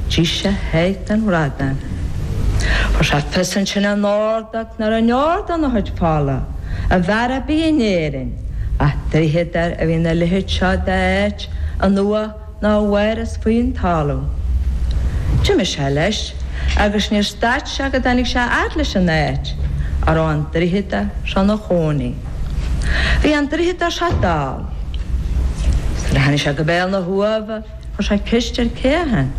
D'ith sé a sháith den bhradán. Fuair sé fios ansin óna ordóg nach raibh aon deor dena chuid fola, i bhfear ar bith in Éirinn, ach draíodóir a bhí ina leithéid seo d'áit, in uamha mhór thíos faoin talamh. D'imigh sé leis agus níor stad sé go dtáinig sé a fhad leis an áit a raibh an draíodóir seo ina chónaí. Bhí an draíodóir seo dall. Nuair a tháinig sé go béal na huamha, Tá sé ceist ar cé a theann.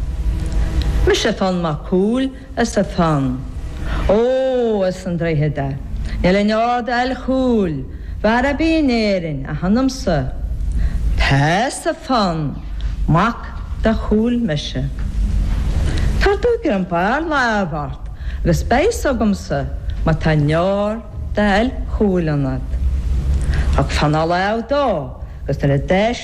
Mise atá an mac cúil is a theann. Ó, as an droichead é. Níl in ord ail chúil bhar a bith in Éirinn a theanamsa. Tá is a theann mac de chúil mise. Tar tú go an barr láimh ort agus beidh fhios agamsa má tá in ord ail chúil ionat. Tá Cfanail Ádh dó agus nuair a d'éis.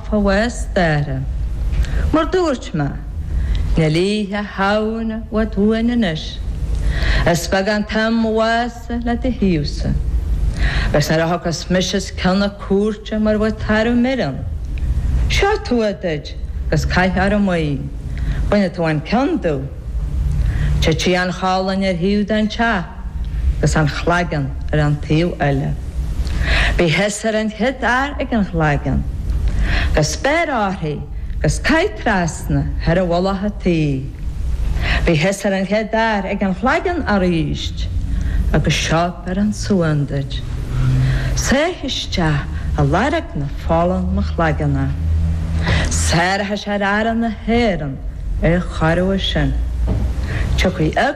Fág staire. Mar dúirt mé, níl Oíche Shamhna i bhfad uainn anois. Is beag an t-amhas é le do thaobhsa. Agus nuair a thiocfas mise os cionn na cúirte mar a bheadh tarbh mire ann. Seo tua duit agus caith ar an Maí. Bainfidh tú an ceann de. Titfidh an cholainn ar thaobh den teach. agus an chloigeann ar an taobh eile. Bí thusa ar an chéad fhear ag an chloigeann agus beir uirthi agus caith trasna thar mhullach an tí í. Bí thusa ar an chéad fhear ag an chloigeann arís agus seo biorán suain duit. Sáigh isteach i lorg na fola ina chloigeann é. Sáróidh sé ar fheara na hÉireann é a chorraí as sin. Tiocfaidh a.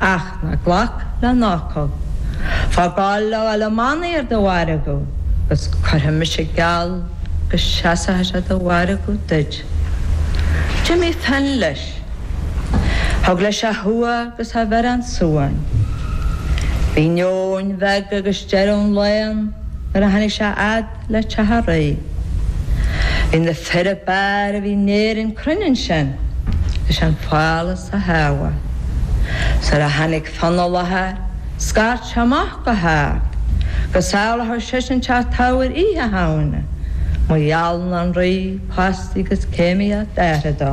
ach ná glac lena fhocal. Faigh Goll le dhul i mbannaí ar do mhargadh agus cuirfidh mise geall go seasfaidh sé do mhargadh duit. D'imigh Fionn leis. Thug leis a thua agus a bhiorán suain. Bhí nóin bheag agus deireadh an lae ann nuair a tháinig sé a fhad. le Teach Rí. Bhí na fir ab fhearr a bhí in Éirinn cruinn ansin leis an phálás a shábháil. Nuair a tháinig Fionn i láthair, scairt sé amach go hard go sábhálfadh seisean teach Teamhair Oíche Shamhna má gheallann an Rí post agus céimíocht a athara dó.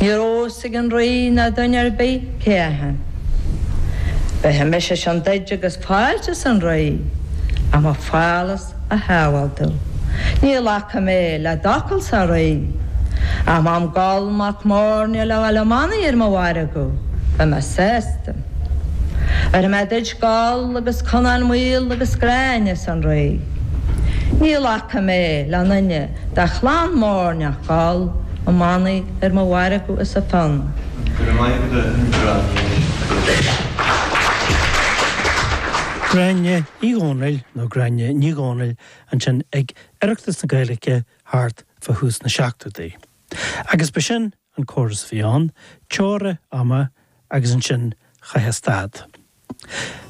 Ní raibh a fhios ag an Rí ná duine ar bith cé a bhí ann. Bhéarfaidh mise sin duid agus. fáilte arsa an rí ach mo phálás a shábháil domh ní ghlacfaidh mé le d'fhocalsa a rí a mam Goll mac Móirne le dhul i mbannaí ar mo mhargadh agus beidh mé sásta bhéarfaidh mé duit Goll agus Conán Maol agus Gráinne arsa an rí ní ghlacfaidh mé le aon duine Tá clann mór neach thall ó manaí ar mo mhargadh is a fonn. Go raibh maith agat a Gráinne. Gráinne Ní Dhomhnaill nó Gráinne Ní Dhomhnaill ansin ag Oireachtas na Gaeilge thart fá thús na seachtóidí. Agus b'shin an córas a bhí ann, teora ama agus ansin chaithfeá stad.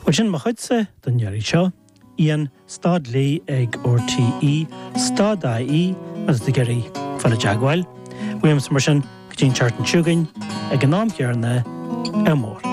Bhuel sin mo chuidse don iarraidh seo. Ian stad Lee ag RTÉ stad IE agus tú ag iarraidh fáil i dteagmháil uaimse mar sin go dtí an tseachtain seo chugainn ag an am chéarna, Ádh mór.